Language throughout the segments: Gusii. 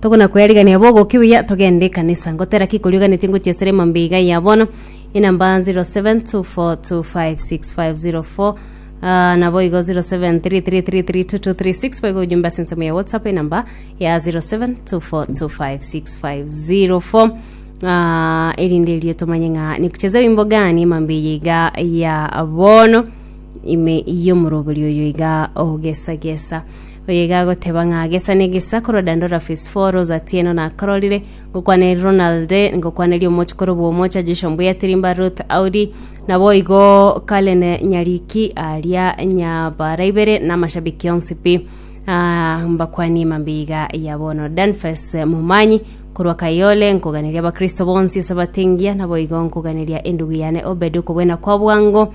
Tokonakweriganera bogokia buya togende ekanisa. Ngotera ki korioganetie ngochia esere emambia iga ya bono? Enamba 0724256504 ah, nabo igo 0733332236 baigo ojumbe ase ensemo ya WhatsApp enamba ya 0724256504 ah, erinde erio tomanye ng'a nikucheze wimbo gani emambia eye iga ya bono ime yomorobori oyo iga ogesagesa Oyega agoteba ng'a gesa ne gesa korwa Dandora Phase 4 Rose Atieno nakororire ngokwana eri Ronald ngokwana eri omochi korobwa omocha Joshua Mbuya Tirimba Ruth Audi naboigo Karen Nyariki aria nyabara ibere na amashabiki onsi pi Ah, mbakwanie mambia iga ya bono Danfes Momanyi korwa Kayole nkoganeria abakristo bonsi ase abatengia naboigo nkoganeria endugu yane Obed okobwena kwa bwango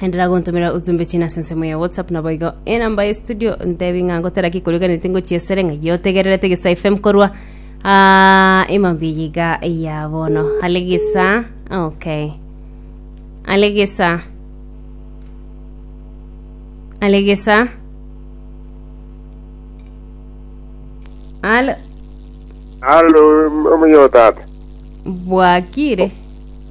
enderera gontomera ujumbe china ase ensemo ya whatsapp naboigo enamba ya studio ntebi ng'a ngotera ki koriganeti ngochia esere ng'a iyo otegererete gesa fm korwa ah, emambia yiga ya bono ale gesa okay ale gesa ale gesa ale Halo, omuyo tata. bwakire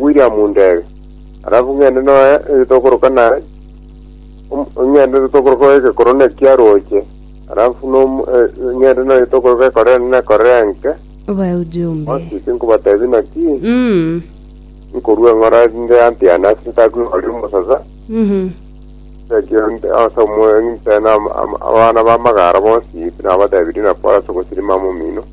William ndebe, alafu ng'ende noe eh, tokoroka naye Om- ng'ende tokoroka oeke korona ekiaroche alafu nom- eh, ng'ende noe tokoroka ekorere nene ekorere enke obae ujumbe osisi nkobatebi naki Mm, nkorwa eng'ora nde antiana ase ntakuna ori omosaza mhm. ase omwe ntena abana bamagara bonsi nabatebirie nakora ase ogosirima momino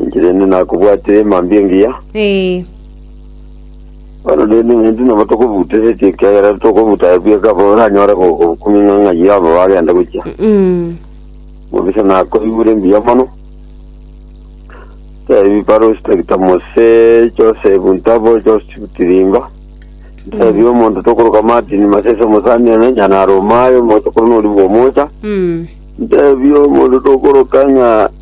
Inche rende nakobwatire emambia engiya, Ee. bono rende ng'enti nabo tokobuteretie ekiagera tokobuta bweka bo oranyore go- go- komenya ng'a ng'ai abo bagenda gochia. Mm. Mobisa nakoigure mbuya mono. Tebi Paros Tagita Mose, Joseph Ntabo, Joseph Tirimba. Tebi omonto tokoroka Martin Masese omosani ene nyana Romayo moto korona ori bwomocha. Mm. Tebi omonto tokoroka ng'a